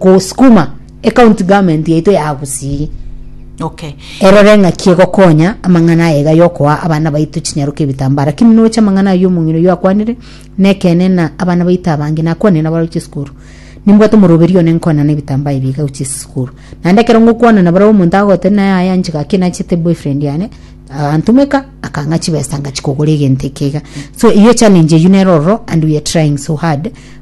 gosukuma ecounty government yaito ya Gusii Okay. erore ng'aki egokonya amang'ana aye iga yokoa abana baito chinyaroka ebitambara lakini noche amang'ana aye omong'ina oyio akwanire nekene na abana baito abange nakwanire nabare gochia esukuru nimbwate omoroberi one nkonana ebitambaa ebi iga gochia esukuru naende ekero ngokwana nabarabwo omonto agoteba naye aye anchika gaki nachete boyfriend yane agantumeka akang'a chibesa ngachia kogora egento eke iga so eyo challenge eywo nero ororo and we are trying so hard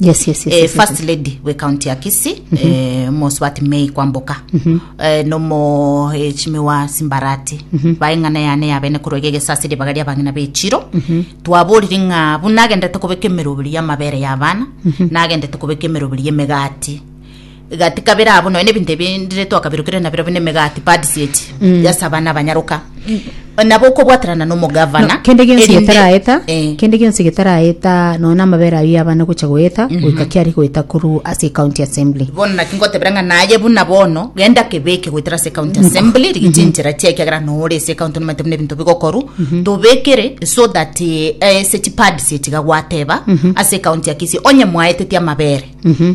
Yes, yes, yes, eh, yes, first yes. lady we county ya kisi mm -hmm. eh, mosubati mei kwamboka mm -hmm. eh, nomo eh, chimi wa simbarati mm -hmm. baeng'ana yane yabene korwa gegesasi ribaga ria bang'ina bechiro mm -hmm. twaborire ng'a bu nagendete kobeka emeroberi y'amabere y'abana mm -hmm. nagendete kobeka emeroberi y'emegati egati kabere abo nonya nebinto ebindire twakabirokerera nabirobio nemegati pads eti Mm. yasa abana abanyaroka nabo okobwaterana nomogavana kende gionsi erinde- getaraeta Eh. kende gionsi getaraeta nona amabere ayio abana gocha goeta goika kiari goeta koru ase county assembly bono naki ngotebera ng'a naye buna bono genda kebeke goetera ase county assembly rigite enchera chia ekiagera nore ase county nomanyete buna ebinto bigokoru tobekere so that eh, ase chipads echigagwateba ase county ya kisii onye mwaeteti amabere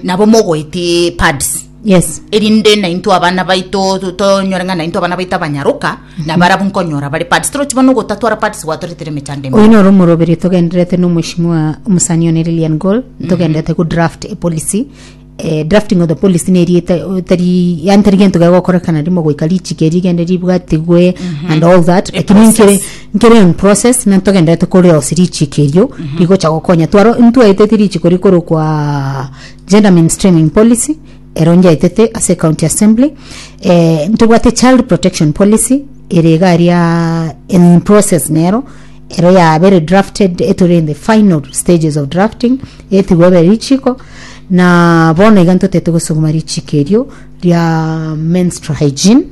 nabo mogoeti pads yes erinde nainto abana baito to- tonyore ng'a nainto abana baito abanyaroka na barabu nkonyora bare pads torochi bono gotatwara pads gwatoretire emechando ime oyo noro omoroberi togendererete na omweshimiwa omosani one lilian gol togenderete go draft a policy Eh, drafting of the policy neri eta- o- tari yani tari gento gegokorekana rimo goika richiko rigende ribwatigwe and all that lakini Process. nkere Nkere in process na ntogenderete korirosia richiko erio rigocha gokonya twaro ntwaeteti richiko rikorokwa gender mainstreaming policy ero nyaetete ase county assembly eh, ntobwate child protection policy ere iga aria in process nero ero ya very drafted etore in the final stages of drafting etigwe ebe richiko na bono iga ntotete gosuguma richiko erio ria menstrual hygiene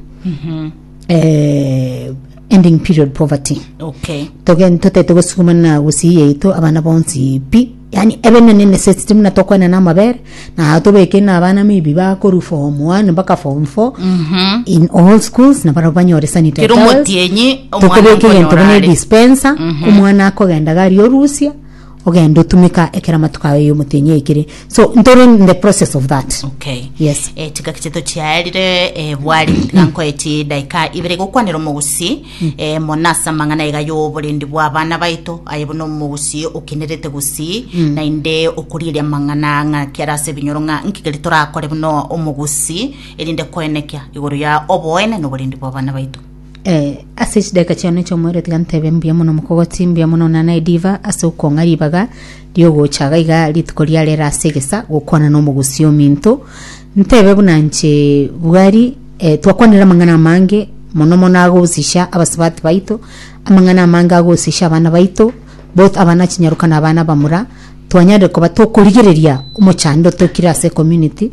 eh, Ending period poverty Okay. togen totaete gosuguma na gusii yaito abana bonsi pi yani ebe ne necessity muna tokwana na amabere na tobeke na abana maybe bakoru form 1 mpaka form 4 Mhm. in all schools na baro banyore sanitary Kero towels. motienyi omwana tokobeka egento okonyora buna are. dispenser omwana akogenda gari orusia Ogende otumeka ekero amatuko ao y'omotenyi aikire. So ntore in the process of that. Okay. Yes. Eh, chigaki chiaito chiaerire eh, bwari tiga nkoeti edaika ibere gokwanera omogusi eh, mona ase amang'ana iga y'oborendi bwa abana baito aye buna omogusi okenerete gusii naende okorigeria amang'ana ng'a kiara ase ebinyoro ng'a nkigeri torakore buna omogusi erinde koenekia igoro ya oboene na oborendi bwa abana baito Eh, ase chidaeka chiane chi'omoerio tiga ntebe mbuya mono mokogoti mbuya mono nana ediva ase okong'a ribaga riogocha iga iga rituko riare ere ase egesa gokwana n'omogusii ominto ntebe buna nche bwari eh, twakwanire amang'ana amange mono mono agosisha abasubati baito amang'ana amange agosisha abana baito both abana chinyaruka na abana bamura twanyare koba tokorigereria omochando tokire ase community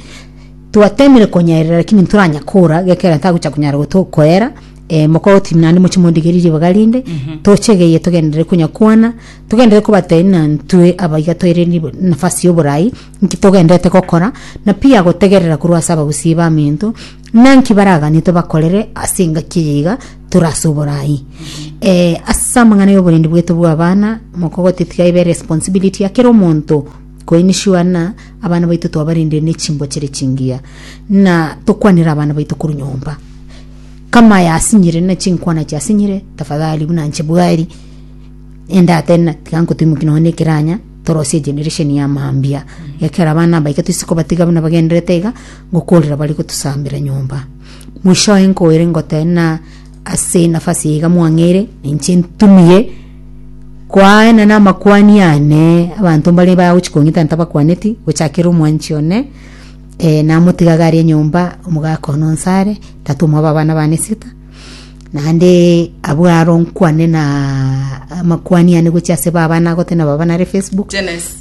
Twatemire konyaerera lakini ntoranya kora gekero ntagocha kunyara goto koera eh, mokoro team nande moche mondigerie ribaga rinde tochegeye togenderere konya kwana togenderere kobatebia na ntwe abaiga toire ribo- nafasi yoborai nki togenderete gokora na pia gotegerera korwa ase abagusii bamento ng'a nki baraganie tobakorere ase engaki eye iga tore ase oborai eh, ase amang'ana ya oborendi bwetu bwa abana mokogote tiga ebe responsibility ya kera omonto Koini sure ng'a abana baito twabarendire ne chimbochire chingiya, ng'a tokwanere abana baito korwa nyomba. Kama yasinyire ne chinkwana chiasinyire, tafadhali buna inche bwari, enda ate ng'a tiga nkotuimokie nonya ne ekeranya, torosie generation ya mambia. Ekero abana aba iga toise kobatiga buna bagendererete iga, ngokorera bare gotosambera nyomba. Mwishowe nkoire ngoteba ng'a. Ase enafasi eye iga mwang'eire, ninche ntumie kwaena namakwani ane, abanto mbare bagochia kong'ita ntabakwaneti, gochakera omwanchi one, eh, namotigaga aria nyomba, omogaka one onsi are, tata omwabo abana bane esita, naende abwo aro nkwane na amakwani ane gochia ase baba nagote na baba nare facebook.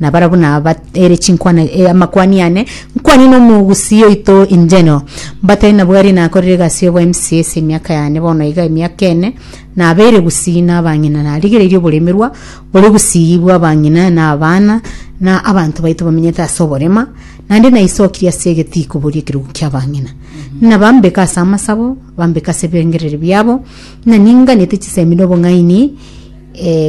Na barabwo naba ere chinkwana e amakwani ane, nkwani na omogusii oito injeno. Mbatari nabwo aria nakorire egasi y'oboa emisiya ase emiaka yane bono iga emiaka ene, nabeire gusii na abang'ina, narigereirie oboremerwa bore gusii bwa abang'ina na abana, na abanto baito bamenyete ase oborema, naende naisokirie ase egetiiko boria ekerugu kia abang'ina. Ng'a bambeke ase amasabo, bambeke ase ebirengererio biabo, ng'a ninganete chisemi na obong'aini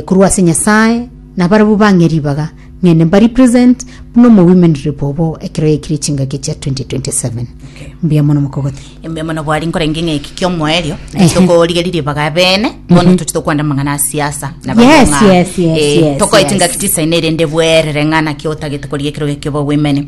korwa ase Nyasae, Na barabwo bang'e ribaga, ng'ende mbari present buna omo women rep obo ekero yaikire chingaki echia 2027. Mbuya mono mokogoti. Mbuya mono bwari nkorenge ng'eki kiomoerio Ehe. tokorigeria ribaga abene bono toche tokwanda amang'ana a siasa na barabwo Yes, ng'a, yes, yes, eh, yes, tokoe yes. chingaki tisaine erinde bwerere ng'a naki otagete korigia ekero gekio obe women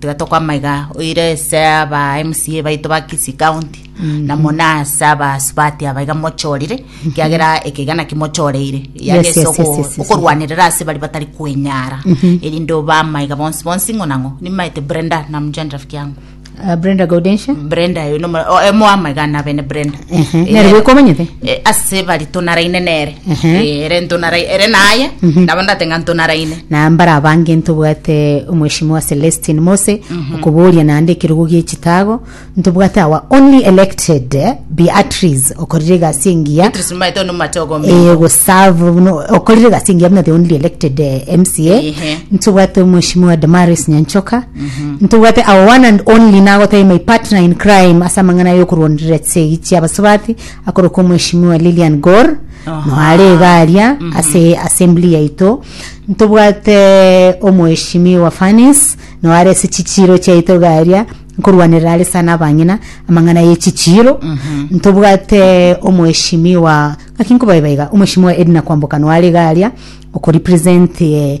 Tiga tokwama iga, oire ase aba MCA baito ba Kisii County na muna ase abasubati aba iga mochorire kiagera ekiga naki mochoreire Yes, yes, yes, yes, yes. okorwanerera ase bari batari kwenyara erinde obama iga bonsi bonsi ng'o na ng'o nimaete Brenda namjani rafiki yangu Ah, Brenda Gaudensia Brenda oyo nomo- o- emoama iga nabene Brenda Ehe, Eh, nere boka omanyete eh, ase bari tonaraine nere Ehe. Eh, ere ntonarai- ere naye Mhm. nabo ndate ng'a ntonaraine na mbara abange ntobwate omweshimiwa celestin mose okoboria naende ekerogo gie chitago ntobwate our only elected eh, beatrice okorire egasi engiya Beatrice Maete ono machogo Eh, minto. gosave buno okorire egasi engiya buna the only elected eh, mca Ehe. ntobwate omweshimiwa damaris nyanchoka Ntoigwete our one and only nagotebia my partner in crime ase amang'ana yokoruonderera chisegi chia basubati akoroka omweshimiwa Lilian Gor Aha. noare iga aria ase assembly yaito ntobwate omweshimiwa Fanis noare ase chichiro chiaito iga aria nkoruanerera are sana abang'ina amang'ana ye chichiro ntobwate omweshimiwa ngaki nkobaeba iga omweshimiwa Edna Kwamboka noare iga aria okorepresent eh,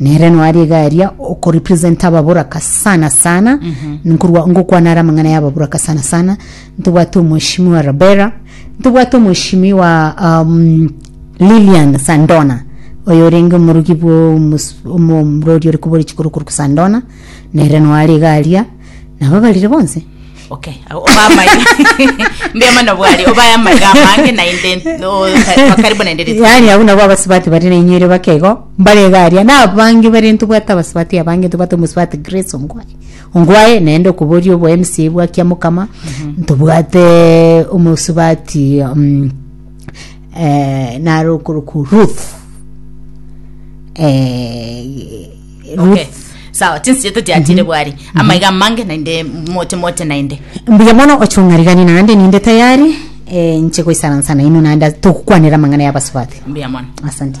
Nere noari egaria okorepresenta ababoraka sana sana nkorwa ngokwana ara amang'ana ya ababoraka sana sana ntobwate omweshimi wa rabera ntobwate omweshimi wa um, lilian sandona oyo orenge omorugi bwa omus- omo- omorori ore kobori chikorokoro sandona nere noare egaria nabo barire bonsi Okay, au- oba amaiga mbia mano bwari oba aya amaiga amange naende no- kwa karibu naende rituko. yaani abwo nabo abasubati bari nainywere bakego mbarega aria na abange bare ntobwate abasubati abange ntobwate omusubati grace ongwae ongwae naende okoboria obo mca bwa kiamukama ntobwate omusubati um, eh, naro okorokwa ruth eh, Okay. sawa chinsiete chiachire bwari amaiga amange naende moche moche naende mbuya mono ochong'arigani naende ninde tayari eh, nche goisaransa naino naende togokwanera amang'ana y'abasubati mbuya mono asante